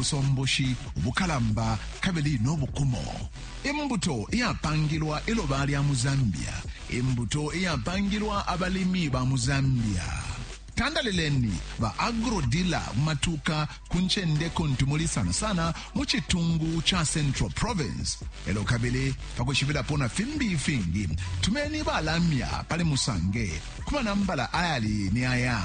ubusomboshi ubukalamba kabili no bukumo, imbuto iyapangilwa iloba lya mu Zambia, imbuto iyapangilwa abalimi ba mu Zambia. Tandalileni ba agrodila mu matuka ku ncende kuntu muli sana sana mu citungu ca Central Province. Elo kabili pakushibilapo na fimbi ifingi, tumeni balamya pali musange ku manambala ayali ni aya